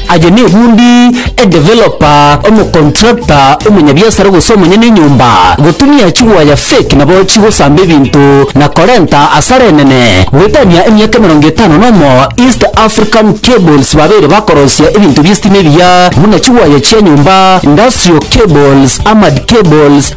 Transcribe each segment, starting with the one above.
Aye nebundi, edeveloper, omocontractor, omonyabiasara gose omonyene enyomba, gotumia chigwaya fake nabo chigosamba ebinto na korenta asara enene. Goetania emiaka emerongo etano nomo, East African Cables babeire bakorosia ebinto bi'estima ebiya buna chigwaya chia nyomba, industrial cables, armored cables,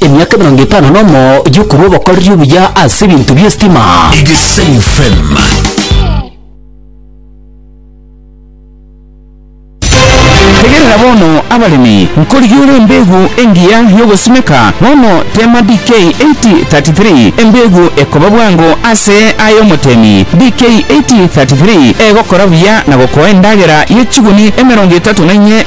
Emiaka emerongo etano nomo yokorwa obokoreri obuya ase ebinto bi'esitima. Egesayo FM. Tegerera bono abaremi, nkorigia ore embeegu engiya y'ogosimeka, bono teema DK 8033, embeegu ekoba bwango ase ay'omotemi. DK 8033 egokora buya na gokoa endagera ye chiguni emerongo etato na inye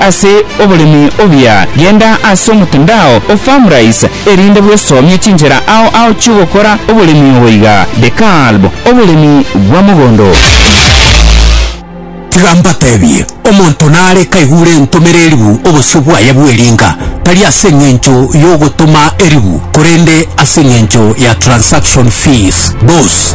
Ase oboremi obuya, genda ase omotandao o Farmrise erinde bwesomie chinchera ao ao chi'ogokora oboremi obo iga, The Kalb, Oboremi bwa mogondo. Tiga mbatebie, omonto nare kaigure entomere eribu obosio bwaye bw'eringa, tari ase engencho y'ogotoma eribu, korende ase engencho ya transaction fees. Thus.